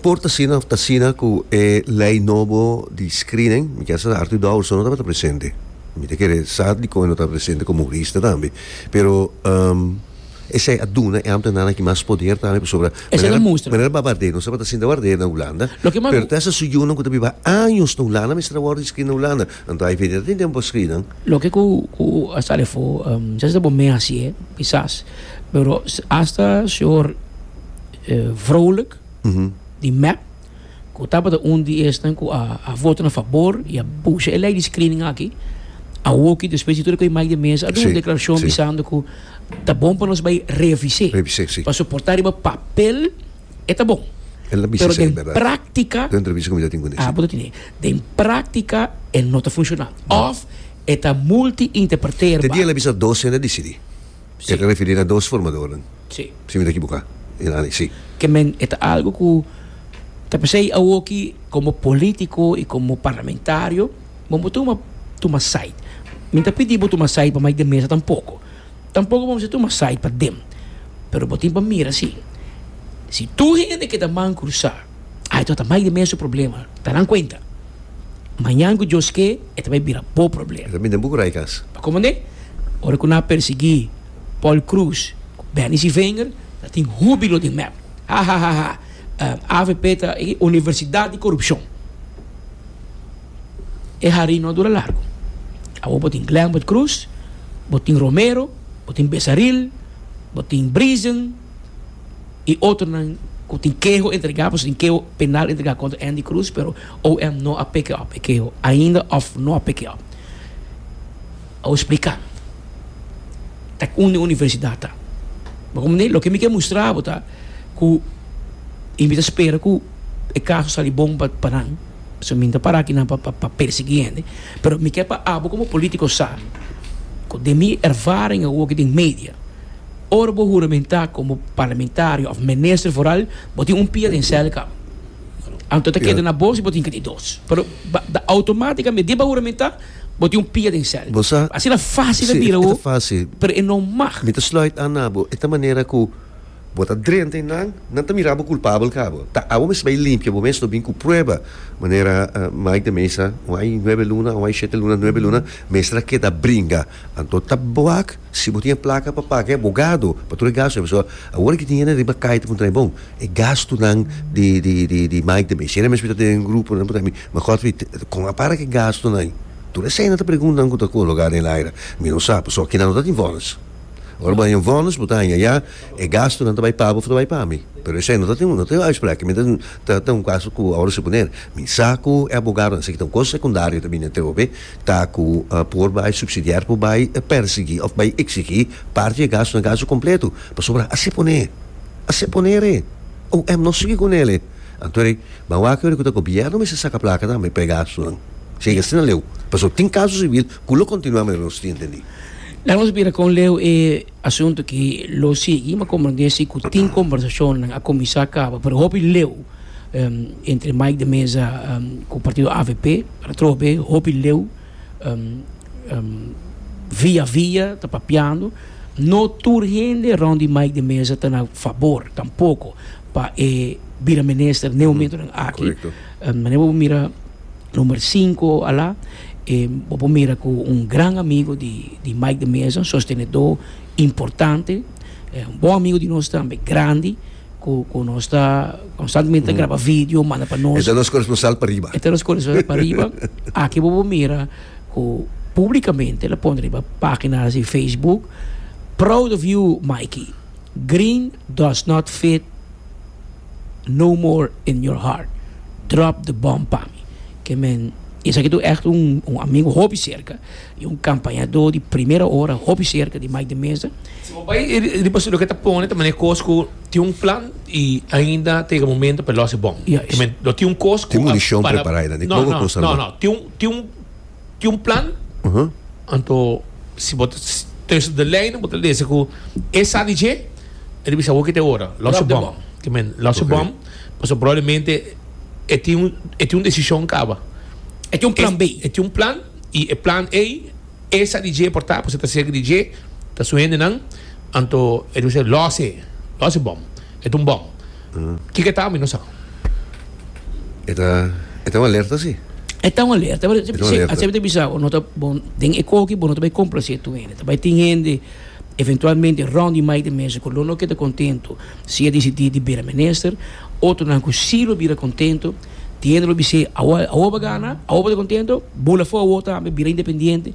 por ta asina of ta asina ku e lei nobo di screening, mi keda sa ta Arthur Douwerson no tabata presente. Mi ta kere sa di kon e no tabata presente komo hurista tambe. Pero esei a duna e ámtenarnan aki mas poder tambe pasobra manera Bavardé no tabata sinta Bavardé na Hulanda, pero ta hasta su yunan ku ta biba años na Hulanda mester a wòrdu di screen na Hulanda. Anto ai feti ta tin den bo scrinan. Loke cu cu a sali afo djazz ta bo me hacié kisas pero hasta señor Vrolijk di mep cu tabata un di esnan cu a a voto na fabor y a pusha e ley di screening aki awoki despues di tur e cu e mic den mesa a duna un declaracion bisando cu ta bon pa nos bay revisé pa soporta riba papel e ta bon. El a bisa esei, berdad. Pero den praktika. Ten entrevista ku mi ta tin ku ne. Ah, bo ta tin esei. Den praktika e no ta funshoná. Òf e ta multiinterpreterba. Te dia el a bisa dos hende a disidí. Si. El ta referí na dos formadornan. Si. Si mi ta ekiboká, e nan ei. Si. Ke men e ta algu ku ta p'esei awoki komo polítiko i komo parlamentario bo no tuma tuma sait. Mi no ta pidí bo tuma sait pa mai den mesa tampoko. Tampoco bo mester tuma side pa dem, pero bo tin pa mira así, si tur hende keda man cruza, ay tabata mai di mes su problema, ta nan cuenta, mañan cu Dios ke e ta bay bira bo problema. Lo minden buco raikas. Pa como ne? Ora cu nan a persegui Paul Cruz cu Benny Siveinger ta tin hubilo den mep, ha ha ha ha, avp ta e universidad di corupcion. E harin no a dura largu. Awor bo tin Glenwood Cruz, bo tin Romero, bo tin Besaril, bo tin Brisen i otronan ku tin keho entregá. Pasobra tin keho penal entregá kontra Andy Cruz, pero OM no a peke òp e keho ainda òf no a peke òp. Awor spliká tak unda e universidat ta. Bo komprendé? Loke mi ke mustra bo ta ku i mi ta spera ku e kaso sali bon pa nan. So mi no ta para aki nan pa persegui hende, pero mi ke pa abo komo politico sa cu den mi ervaring awor aki den media, ora bo huramenta komo parlamentario of minister foral bo tin un pia den cel kaba. Anto ta keda na bos y bo tin ke tin dos. Pero automaticamente di bo a huramenta bo tin un pia den cel. Asina facil ta bira awor pero e no mag. Mi ta sluit aan na bo, e ta manera cu. Bo ta drenta i nan, nan ta mira bo kulpabel cabo. Ta awor mes bay limpia bo mes, no bin cu prueba. Manera Mike de Meza, un ay nuebe luna, un ay shete luna, nuebe luna, mester a keda bringa. Anto ta boak, si bo tin e placa pa paga e abogado, pa tur e gasto, pasobra awor aki tin hende riba cay ta puntra mi, bon, e gastunan di di Mike de Meza, si ere mes bita den e grupo, nan ta puntra mi, ma Godfrey, con a para cu e gastunan ay? Tur esey nan ta pregunta nan cu ta cologa den el aira, mi no sa, pasobra kinan no ta tin vonnis. Ora bo haña vònus, bo ta haña ya e gastunan ta bai pa bo of ta bai pa mi. Pero esei no ta tin no ta tin uitsprek, mi ta ta un kaso ku ora si bo ner mi sa ku e abogadonan esei ta un kos sekundario ta bini entre bo be ta ku por bai supsidiar por bai pèrsiguí of bai eksigí parti di e gastunan gastu kompletu pasobra a se pone a se pone re oem no sigui ku nele anto rei ban wak yori ku ta gobièrnu mester saka plaka tambe pa e gastunan si oi asina leu paso tin kaso sibil ku lo kontinuá manera nos tin entendí. Lanos bira kon leu e asuntu ki lo sigui, ma komo nan ke si ku tin kombersashonnan a kuminsá a kaba, pero hopi leu entre Mike de Meza ku partido avp atrobe hopi leu via via ta papiando, no tur hende rònt di Mike de Meza ta na fabor tampoko pa e bira minister ne homentonan aki, manera bo mira number sinku a la. E bo por mira cu un gran amigo di di Mike de Meza, un sostenedor importante, e un bon amigo di nos tambe, grandi, cu cu nos ta constantemente ta graba video manda pa nos. E ta nos coresponsal pariba. E ta nos coresponsal pariba. Aki bo por mira cu publicamente el a pone riba pagina di Facebook, Proud of you Mikey. Green does not fit. No more in your heart drop the bomb pa mi ke men esaki ta un echt un un amigo hopi serka i un kampañadó di primera ora hopi serka di Mike de Meza. Si bo bai riba su loke ta pone ta manera kos ku tin un plan i ainda ta yega momento pa e lòs e bòm ke men lo tin un kos ku tin munishon prepará e nan tin un tin un. tin un plan, anto si bo ta tussen de lijnen bo ta lesa cu e sa di dje e ta bisa awor kit e ora, los je bom, ki men los je bom, pasobra probablemente e tin un e tin un decision caba, e tin un plan B, e tin un plan y e plan ey e sa di dje por ta, pasobra e ta cerca di dje, ta su hendenan, anto e ta bisa los je, los je bom. E ta un bom. Kiko e ta mi no sa. E ta e ta un alerta si. E ta un alerta pero asina mi ta bisa bo no ta bon den e koki bo no ta bai complase tur hende ta bai tin hende eventualmente rond di mai di mes ku lo no keda contento si e decidi di bira minister otronan ku si lo bira contento tin hende lo bis'e awor awor bo a gana awor bo ta contento bula for awor tambe bira independiente.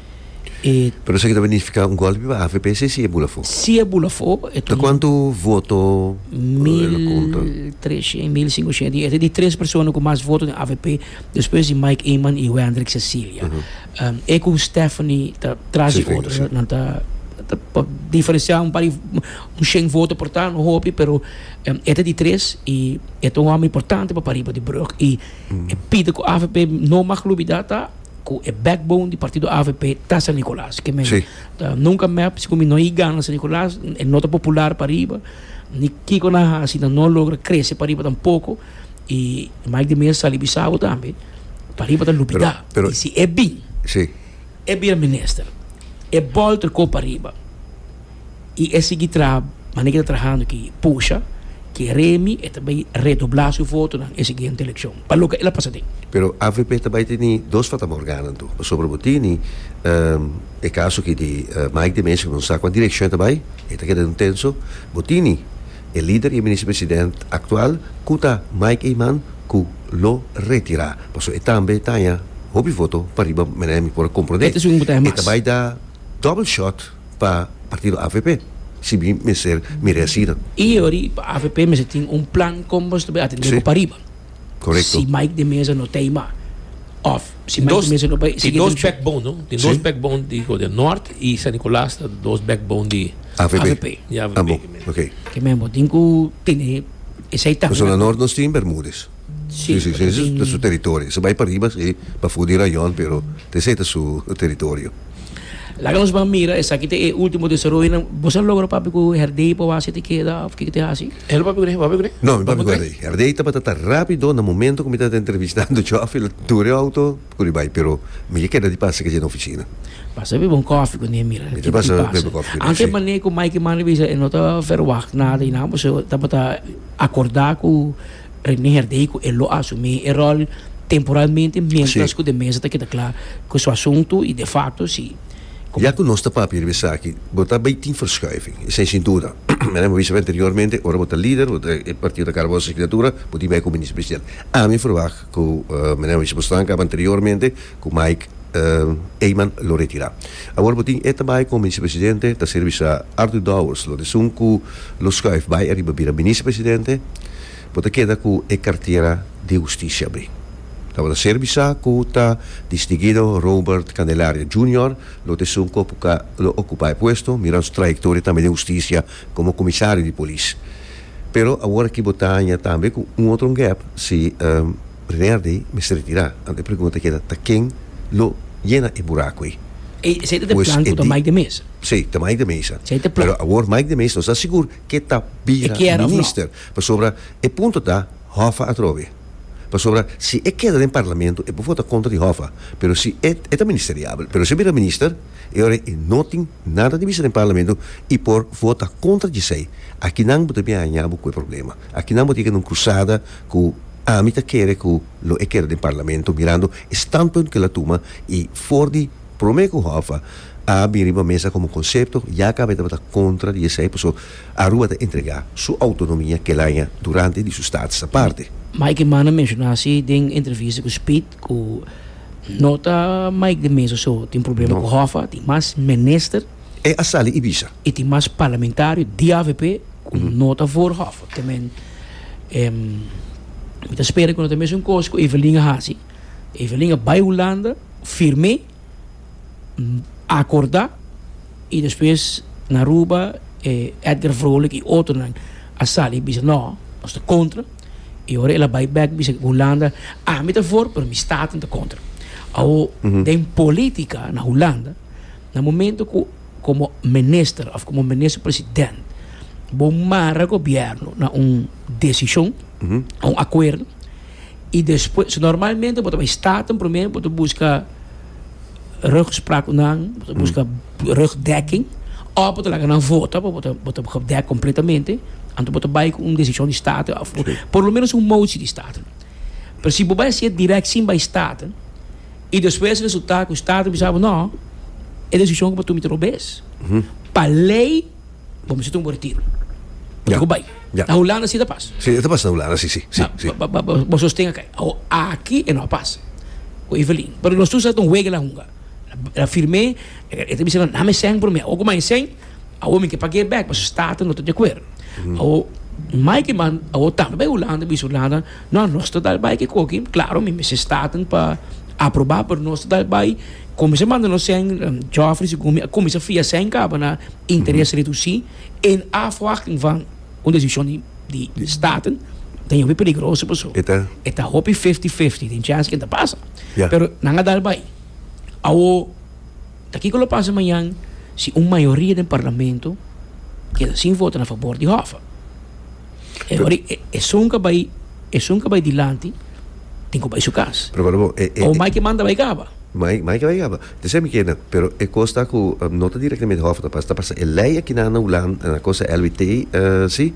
Pero esaki ta nifica un golpe pa AVPC si e bula fo? Si e bula fo. Ta cuantu voto el conta? Mil treshen, mil cincushent y e ta di tres persona cu mas voto den avp despues di Mike Eman y Wendrick Cecilia. E cu Stephanie ta tras di otro so nan ta pa diferencia un par di un shen voto por ta no hopi pero e ta di tres y e ta un homber importante pa pariba di Brugge y e pida cu avp no mag lubida ta. cu e backbone di partido avp ta San Nicolas. Que men ta nunca mep, si cu mi no hay gana San Nicolas, e no ta popular pariba, ni kico nan haci nan no logra crece pariba tampoco. Y Mike de Meza sali bisabo tambe, pariba ta lupida. Y si e bin, e bira minister, e bol tracó pariba. y e sigui traha manera cu e ta trahando aki, pusha que Remy e ta bay redobla su votonan e siguiente eleccion, pa loke el a pasa den. Pero avp ta bay teni dos fatamorganan tur, pasobra bo tini e caso aki di Mike de Mesa, cu no sa cua direccion e ta bay, e ta keda den un tenso, bo tini e lider y e minister president actual cu ta Mike Eman cu lo retira, pasobra e tambe ta haya hopi voto pa riba manera mi por a comprende, e ta bay da double shot. pa partido avp si bin mester mira e asina. E yori pa avp mester tin un plan con boso ta bay atende bo pariba si Mike de Meza no ta ima of si Mike de Meza no bay sigui e eleccion. Tin dos backbone di Godia Nort y San Nicolas ta dos backbone di avp. Abo ok. Kimen bo tin cu tene esey tambe. Zona Nort nos tin Bermudez. Sí, sí, sí, su, su teritorio. Su bai pariba, sí, pafó di rayon, pero ta esei ta su teritorio. Laga nos ban mira, esaki ta e último desaroyonan. Boso a logra papia ku Herdey pa wak sete keda òf ke ku ta hasi? El no papia ku rei, bo papia ku rei? No, mi papia ku Herdey. Herdey tabata ta rápido na momento ku mi tabata entrevistando Jòf, el a tura e outo kuri di bai, pero mi ke keda di pasa kei dje na ofisina. Pasa bebe un kòfi ku mi a mira kiko ta pasa. Anto e manera ku Mike Mann a bisa e no ta vèrwagt nada i nan, boso tabata akordá ku Rene Herdey cu e lo asumi e rol temporalmente mientras cu de mesa ta keda cla cu su asunto y de facto si como. Ya cu nos ta papia riba esaki, bo ta bay tin verschuiving, esey sin duda. Mira, mi a bisa bo anteriormente, ora bo ta lider, bo ta e partido ta carga bo asignatura, bo tin bay como minister-presidente. Ami a verwacht cu, mira, mi a bisa bo stanca anteriormente, Cu Mike Eman lo retira. Awor bo tin e ta bay como Minister-Presidente, ta ser bisa Arthur Dowers lo esun cu lo schuif bay ariba bira Minister-Presidente, bo ta keda cu e cartera di Husticia abri. Tabata ser bisa cu ta Distinguido Robert Candelaria Junior lo ta esun cu a lo ocupa e puesto, mirando su trayectoria tambe den Husticia como Comisario di Polis. Pero awor aki bo ta haña tambe cu un otro ngep si. Primer di mester retirá. Ante e pregunta keda ta ken lo yena e buraco ei. Esei ta den plan cu ta Mike de Meza? Sí, ta Mike de Meza. Esei ta plan. Pero awor Mike de Meza no sta sigur ke ta bira minister. Pasobra e punto ta Hoffa atrobe. Pasobra si e keda den parlamento e por vota contra di Hoffa. Pero si e ta ministeriabel. Pero si e bira minister e ora ei e no tin nada di bisa den parlamento i por vota contra dje sei. Aki nan bo ta bin haña bo cu e problema. Aki nan bo tin ke keda un crusada. ku ami ta kere ku lo e keda den parlamento mirando e standpunt ku el a tuma i for di promé ku Hof a a bin riba mesa komo konsepto ya kabe tabata kontra di esei paso Aruba ta entregá su outonomia kel aña durante di su status aparte. Mike Eman a menshoná si den entrevista ku Spit ku no ta Mike di mesa so tin problema ku Hof a tin mas minister. E a sali y bisa. E tin mas parlamentario di avp cu no ta voorgehoffig te men mi ta spera cu no ta mesun cos cu Evelyn a haci. Evelyn a bay Hulanda, firme, acorda y despues na Aruba e Edgar Vrolijk y otronan a sali bisa no nos ta contra y ora el a bay bek bisa cu Hulanda ami ta voor pero mi staten ta contra. Awo den politica na Hulanda. Na momento cu como minister of como minister president bo mara gobierno na un decision, a un acuerdo y despues, so normalmente bo ta bay staten primer bo ta busca rugspraak cu nan, bo ta busca rugdekking of bo ta laga nan vota bo ta bo ta gedekt completamente anto bo ta bay cu un decision di staten of por lo menos un motie di staten. Pero si bo bai haci'e direct sin bai staat y despues resulta cu staat a bisa bo no, e decision cu bo tuma ta robes. Pa ley bo mester tuma bo retiro. Bo tin cu bai. Na Hulanda asi ta pas. Si, e ta pasa na Hulanda si, si, si, si. Bo sosten akai. Awor, aki e no a pasa cu Evelyn. Pero nos tur sa ta un wega la hunga. La firme, e ta bisa nan, nan mi seng prome. Awor cu mai seng. Awo mi ke pag'é bèk pasobra Staten no ta di akuer. Awo mai ke man awo tambe bai Hulanda i bisa Hulanda, No, nos ta dal bai ke koki, klaro mi mester Staten pa aprobá, pero nos ta dal bai. Kuminsa manda nos sèn, Jòfri si Gumi a kuminsá fia sèn kaba na interes redusí en afwachting van un desishon di di di Staten, ta ña hopi peligroso paso E ta. e ta hopi fifti-fifti, tin chèns ku ta pasa. Ya. Pero nan a dal bai. Awo. Ta kiko lo pasa mañan si un mayoria den parlamento keda sin vota na fabor di Hoffa? E ora ei esun ka bai esun ka bai dilanti tin ku bai su kas. Pero manda bo e e. O Mike manda bai kaba. Mike Mike bai kaba. Te esei mi keda pero e kos ta ku no ta direktamente Hoffa ta pasa ta pasa e lei akinan na Hulanda na kos ta LWT si.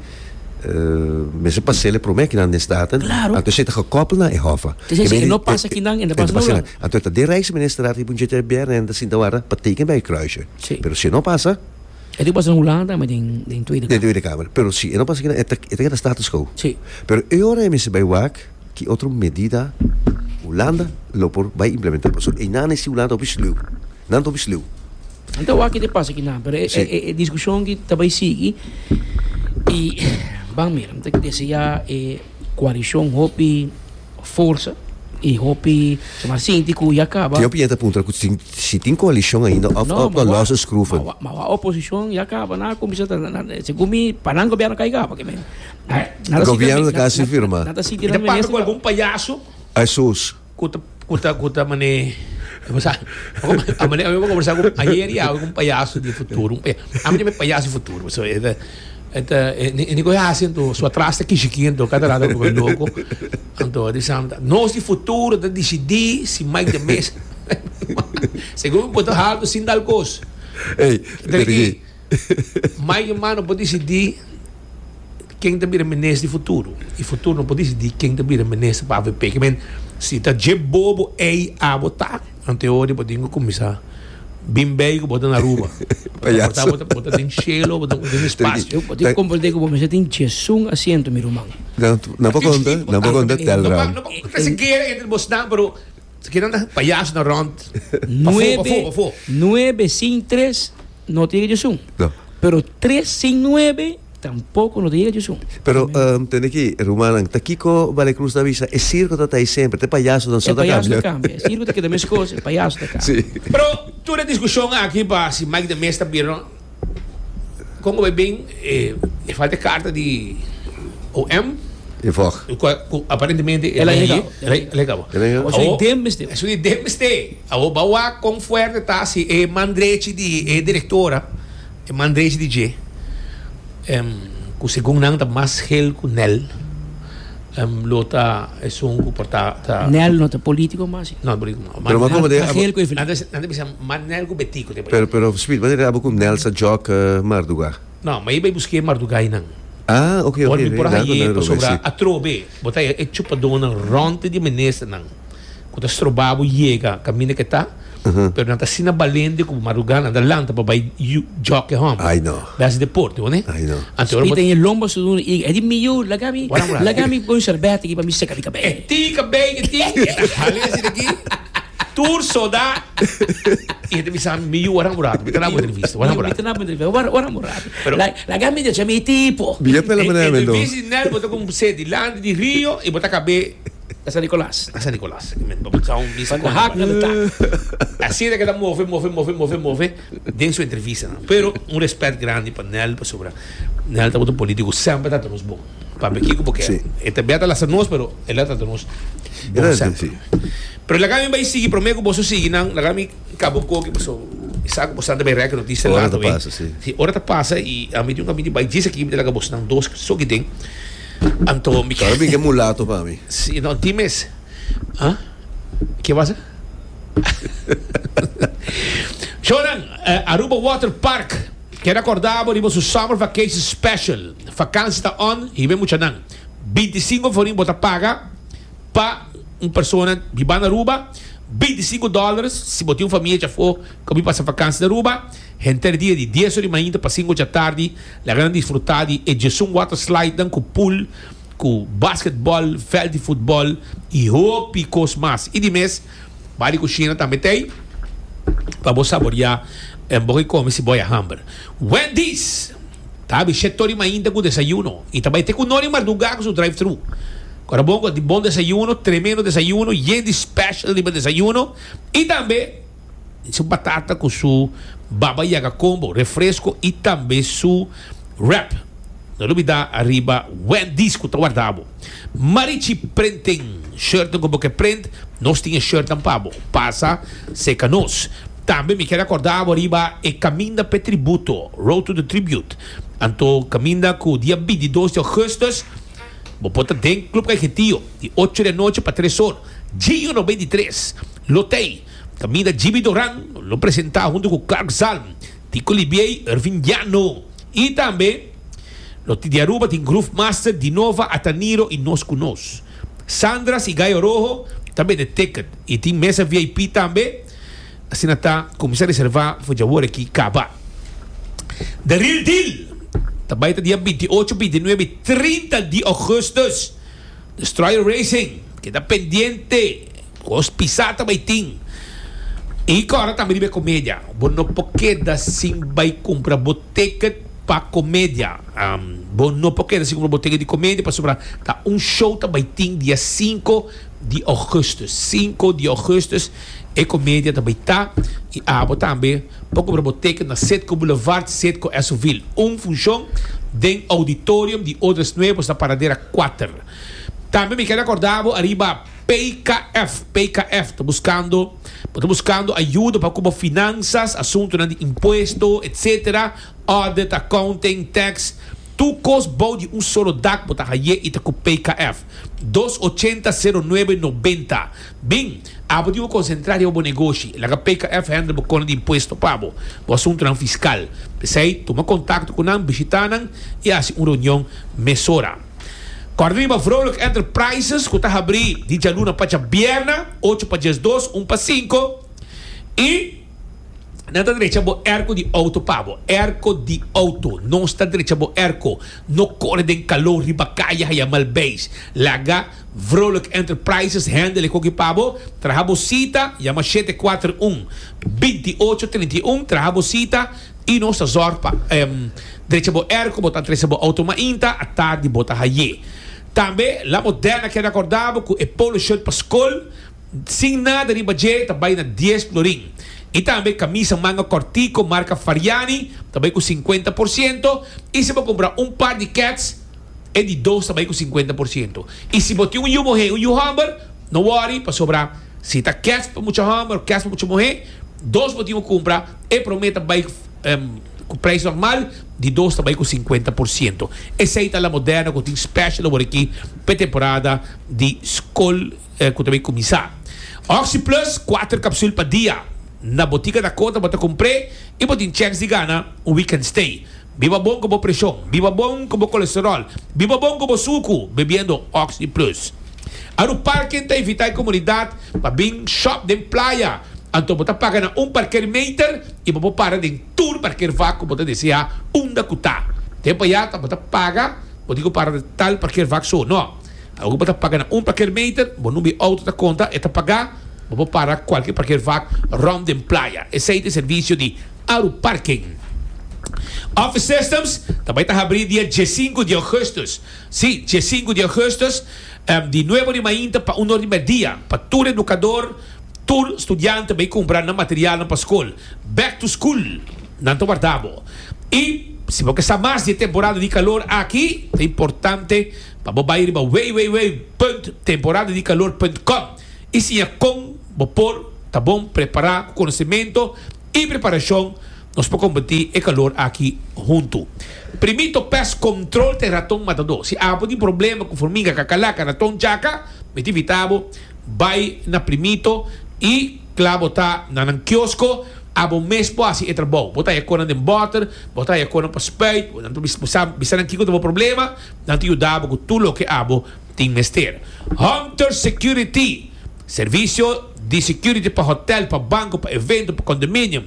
Mester pa sele prome kinan den staten. Claro. Anto esei ta gekoppel na e hof a. Te sa esei, e no pasa kinan, e no pasa noran. Anto e ta den Rijksministerraad riba un GTBR en e ta sinta wara pa teken bij e kruisje. Si. Pero si e no pasa. E tin ku pasa den Hulanda tambe den Tweede Kamer. Den Tweede Kamer. Pero si e no pasa kinan e ta keda status quo. Si. Pero e ora e mester bai wak ki otro medida Hulanda lo por bai implementá pasobra einan e si Hulanda ta hopi sluw. Nan ta hopi sluw. Nan ta wak te pasa kinan, pero e, e, e discusion ki ta bay sigui. Y, van mira, te desea e coalición hopi forza y hopi, maar sinti ku ya acaba. Yo piensa puntra ku si tin coalición ainda of no, of no losse schroeven. Maar maar wa oposición ya acaba na comienza ta na se gumi panan gobierno kai acaba que men. Gobierno kasi firma. Nada si tiran. Te pasa ku algun payaso? Asus. Cu ta, cu ta, cu ta mane, cu sa, a mane, a conversa cu ayer y awe un payaso di futuro, un payaso, a mane me payaso di futuro, so, e ta, e ta, e ni coe haci anto, so atras ta kishi ki anto, cada rato coe loco, anto di sam, nos di futuro ta dicidi si Mike de Meza, segun mi poto halto sin tal cos, ta di ki. Mai Yuma no por disidí ken ta bira minister di futuro, i futuro no por disidí ken ta bira minister pa avp. Ke men, si ta dje bobo ei a bo ta, ante ora bo tin ku kuminsá bin bei ku bo ta na Aruba. Payaso. Bo ta bo ta den shelo, bo ta den Ten- espasio. Yo tin komprendé ku bo mester tin djesun asiento, mi ruman. Nan, nan por konta, nan por konta tèl No pa, raam. no pa, no ta kasi guera entre bosnan, pero Nuebe, nuebe sin tres no ta yega djesun. Pero tres sin nuebe tampoko no ta yega djesun. Pero tende aki, rumannan, ta kiko Bale Cruz ta bisa? E sirko ta ta ei semper, te payasonan so ta kambia. E payaso ta kambia, e sirko ta keda meskos, e payaso ta kambia. Pero tur e diskushon aki pa si Mike de Mez ta bira no. Kon ku bai bin e falta e karta di OM? E fòk. Ku aparentemente e bin ayi. El a llega. El a llega bo. El a llega. Awo. Esun di den mester. Esun di den mester. Awo bai wak kon fuerte ta si e man drechi di e direktora, e man drechi di dje. Cu segun nan ta mas gel cu Nel. Lo ta esun cu por ta ta. Nel no ta politico mas si. No ta politico mas. Pero m'a comod'e. Ta gel cu Evelyn. Nan ta bisa mas Nel cu Betty cu ta por. Pero Speed m'a dere abo cu Nel sa jok Marduga. No, m'a bay busque Marduga y nan. Ah, ok, ok. Por mi por haye pasobra atrobe bo ta e chupadonan rond di minister nan. ku ta stroba bo yega kaminda ke ta, pero nan ta asina balente ku bo madrugá nan ta lanta pa bai jòk e hòmber. Ai no. Bai hasi deporte bo ne. Ai no. Anto ora bo. Spita e lomba su duna i e di mi yu laga mi laga mi bon shèrbèt aki pa mi seka mi kabei. E ti kabei ke ti e ta hali hasi na ki tur soda i e ta bisa mi mi yu waran bo rato mi ta na bo entrevista waran bo rato. Mi ta na bo entrevista waran bo rato. Pero. Laga mi decha mi e tiempo. Biet na la manera mendo. Entrevista di Nel bo ta kumse dilanti di Rio i bo ta kab'e Ta San Nicolas. Ta San Nicolas. Manda hak na ta. Así ta keda move, move, move, move, move den su entrevistanan. Pero un respet grandi pa Nel pasobra Nel tabata un politico semper ta ta nos bon. Papia kico bo kier. E ta bia ta lasa nos pero el a ta ta nos bon semper. Pero laga mi bai sigui prome cu boso sigui nan laga mi caba un coki paso mi sa cu boso nan ta bai reki noticia lato. Ora ta pasa si. Ora ta pasa y ami tin un caminti bai djis aki mi ta laga boso nan dos so ki den. Anto mi Todavía mi ke mulato pa mi. Sí, no, tin mes. Ah? Ke pasa? Shownan, eh, Aruba Water Park keda kordá bo riba su Summer Vacation Special. Vakansi ta on, hib'é muchanan. Binti i sinku forin bo ta paga pa un persona di banda Aruba, binti i sinku dòlars si bo tin un famia djafó. Cu mi pasa vakansi na Aruba, henter dia di dies ora di mainta pa sinku dja tardi laga nan disfrutá di e djesun water slidenan cu pool cu basketbal veld di futbal i hopi cos mas. I di mes bai di cushina tambe ta ei pa bo saboriá en bo ke come si bo a hamber. Wendy's ta abi shete ora di mainta cu desayuno i ta bai te cu no di mardugá cu su drive-thru. Corabongo di bon desayuno, tremendo desayuno, yen di special riba desayuno i tambe. su batata cu su baba yaga combo, refresco y tambe su wrap. No ta olbida ariba Wendy's cu ta warda bo. Marichi Printing, shirtnan cu bo ke print, nos tin e shirtnan pa bo. Pasa seca nos. Tambe mi ker a corda bo riba e caminda pe tributo, Road to the Tribute. Anto caminda cu dia bintidos di Augustus bo por ta den Club Cajetio di ocho di anochi pa tres or. Gio no bintitres. Lotei. Caminda Jimmy Doran lo presenta hunto cu Clark Zalm, Tico Libiey, Irvin Llano y tambe lo tin di Aruba tin Groove Master Dinova Ataniro y Nos Cu Nos. Sandras y Gayo Roho ta bende ticket y tin mesa VIP tambe, asina ta cuminsa reserva for dj'awor aki caba. The Real Deal ta bay ta dia binti ocho, binti nuebe y trinta di Augustus. Destroyer Racing keda pendiente. Cos pisa ta bay tin. Y cora tambe riba e comedia. Bo no por keda sin bay cumpra bo ticket pa comedia. Bo no por keda sin cumpra bo ticket di comedia pasobra ta un show ta bay tin dia cinco di augustus. Cinco di augustus e comedia ta bay ta. Y abo tambe por cumpra bo ticket na Citgo Boulevard, Citgo Esoville. Un funcion den auditorium di Odres Nuevos na Paradera cuater. Tambe mi keda corda bo ariba. PKF, PKF ta buskando bo ta buskando ayuda pa ku bo finansas, asuntunan di impuesto, etc. Audit, accounting, tax, tur kos bou di un solo dak bo ta haya i ta ku PKF. Dos ochenta sero nuebe nobenta. Bin, abo tin bo konsentrá riba bo negoshi. Laga PKF hende bo kona di impuesto pa bo, bo asuntunan fiskal. P'esei, tuma kontakto ku nan, bishitá nan i hasi un reunion mesora. Kòrda riba Vrolijk Enterprises ku ta habrí di djaluna pa djabièrna, ocho pa diesdos, un pa sinku, i nan ta drecha bo èrko di outo pa bo. Èrko di outo. Nos ta drecha bo èrko. No kore den kaló riba kaye haya malbeis. Laga Vrolijk Enterprises hèndel e koki pa bo. Traha bo sita, yama shete kuater un, binti ocho, trinta i un, traha bo sita. I nos ta zorg pa drecha bo er ku bo ta trese bo outo mainta a tardi bo ta haye. Tambe la Moderna keda korda bo ku e polo shirt pa skol sin nada riba dje ta bai na dies florin. I tambe kamisa manga kòrtiko marka Fariani ta bai ku sinkuenta por siento i si bo kumpra un par di kets e di dos ta bai ku sinkuenta por siento. I si bo tin un yu muhé un yu hòmber no wòri pasobra si ta kets pa mucha hòmber o kets pa mucha muhé, Dos bo tin un cumpra, e prome ta bay cu prijs normal, di dos ta bay cu cincuenta por ciento. Esey ta La Moderna cu tin special awor aki p'e temporada di scol cu ta bay cuminsa. Oxi Plus cuater capsul pa dia. Na Botica Dakota bo ta cumpre y bo tin chance di gana un weekend stay. Biba bon ku bo preshon. Biba bon ku bo kolesterol. Biba bon ku bo suku bebiendo Oxi Plus. Aru Parken ta invitá e komunidat pa bin shòp den playa. Anto bo ta paga na un parkermeter i bo por para den tur parkervak ku bo ta deseá unda ku ta. Te pa ya ta bo ta paga, bo tin ku para na tal parkervak so. No. Ora ku bo ta paga na un parkermeter, bo number di outo ta konta, e ta pagá. Bo por para kualke parkervak rònt den playa. Esei ta e servisio di. Aru Parking. Office Systems ta bai ta habrí dia diesinku di ougùstus, sí, diesinku di ougùstus, di nuebu di mainta pa un or di mèdia, pa tur edukador, tur studiante bai kumpra nan materialnan pa skol. Back to School nan ta warda bo. I si bo ke sa mas di e temporada di kalor aki, ta importante pa bo bai riba www.temporadadikalor.com i siña kon bo por ta bon prepará ku konosementu, I preparashon, Nos por kombati e kalor aki huntu. Primí to pes kontrol t'e raton matadó. Si apo tin problema ku formiga, kakalaca, raton chaka, mi ta invitá bo bai na Primito i kla bo ta na nan kiosko, abo mes por hasi e trabou. Bo ta haña konan den bòter, bo ta haña konan pa spuit, nan ta bisa nan kiko ta bo problema, nan ta yuda bo ku tur loke abo. Tin mester. Hunter Security, Servisio di security pa hotel, pa banco, pa evento, pa condominium.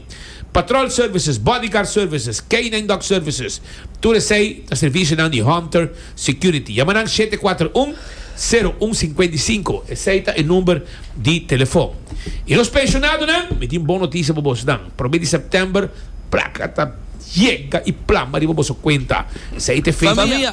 Patrol Services, Bodyguard Services, Canine Dog Services, tur esey ta servisionan di Hunter Security. Yama nan shete kuater un, sero un singkuenta i sinku, esey ta e number di telefon. I nos pensionadonan, mi tin bon notisia pa bosnan, prome di September, plaka ta yega i plama riba boso kuenta, esey ta e fecha.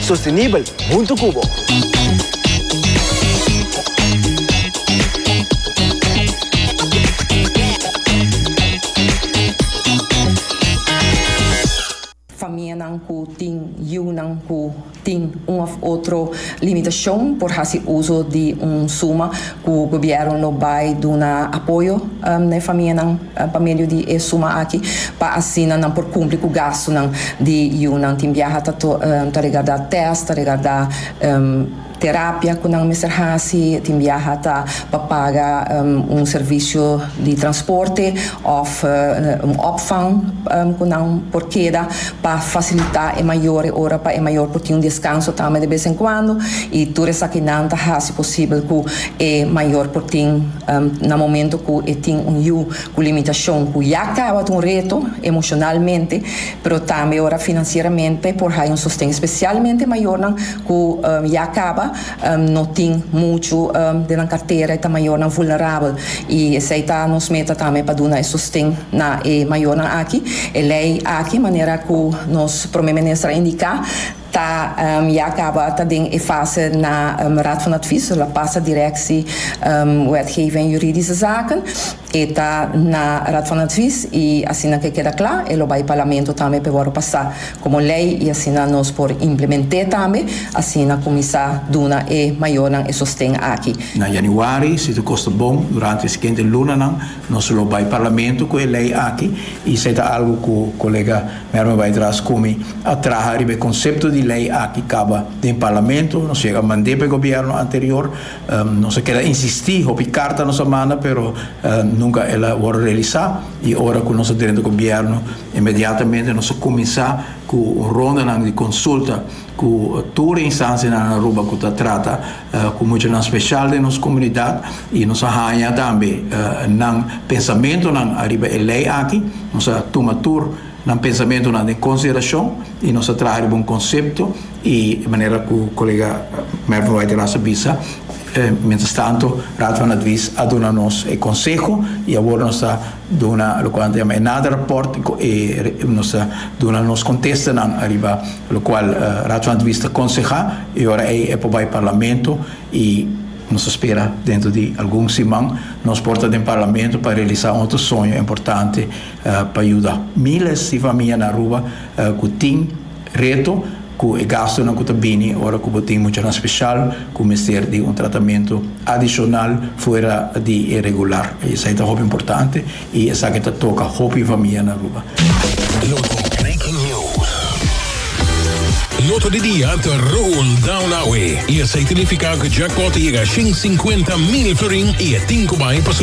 Sostenibel huntu cu bo. Famianan cu tin yiunan cu tin un of otro limitacion por haci uzo di un suma cu Gobierno lo bay duna apoyo na e famianan. pa medio di e suma aki pa asina nan por kumpli ku gastunan di yunan. Tin biaha ta ta regardá tèst, ta regardá terapia ku nan mester hasi, tin biaha ta pa paga un servisio di transporte òf un òpvang ku nan por keda pa fasilitá e mayornan ora pa e mayor por tin un deskanso tambe de bes en kuando i tur esakinan ta hasi posibel ku E mayor por tin na momento cu e tin un yu cu limitacion cu ya caba ta un reto emocionalmente, pero tambe ora financieramente por hay un sosten, especialmente e mayornan cu ya caba no tin mucho den nan cartera y ta mayornan vulnerabel y esey ta nos meta tambe pa duna e sosten na e mayornan aki. E ley aki manera cu nos Prome Minister a indica Ta ya kaba ta den e fase na Raad van Advies, lo a pasa Directie Wetgeving en Juridische Zaken. E ta na Raad van Advies y asina ke keda kla e lo bay Parlamento tambe pa e worde pasa como ley y asina nos por implement'é tambe asina cuminsa duna e mayornan e sosten aki. Na Januari, si tur cos ta bon, durante e siguiente lunanan nos lo bay Parlamento cu e ley aki y esei ta algo cu Colega. Merme bai tras komi a traha riba e konsepto di lei aki kaba den parlamento, nos yega mand'é pa e gobièrnu anterior, nos a keda insistí, hopi karta nos a manda pero nunka el a wòrdu realisá i ora ku nos a drenta gobièrnu inmediatamente nos a kuminsá ku rondanan di konsulta ku tur e instansianan Aruba ku ta trata ku muchanan speshal den nos komunidat i nos a haña tambe nan pensamentunan ariba e lei aki. Nos a tuma tur nan pensamentunan den konsiderashon i nos a traha riba un konsepto i manera ku kolega Mervin White Ras a bisa, mientras tanto Raad van Advies a duna nos e konseho i awor nos ta. Duna locual ta yama e nada rapport y cu e nos ta duna nos contestanan ariba locual Raad van Advies ta conseha y ora ey e por bay Parlamento y nos ta spera dentro di algun siman nos por ta den Parlamento pa realisa un otro soño importante pa yuda miles di famia na Aruba cu tin Reto, Ku e gastunan ku ta bini ora ku bo tin muchanan speshal ku mester di un tratamentu adishonal fuera di e regular. Esei ta hopi importante i esaki ta toka hopi famia na Aruba. Lo di Breaking News. Lo to di dia ta roll down awe i esei ta nifiká ku jackpot a yega shin sinkuenta mil florin i e tin ku bai pa su.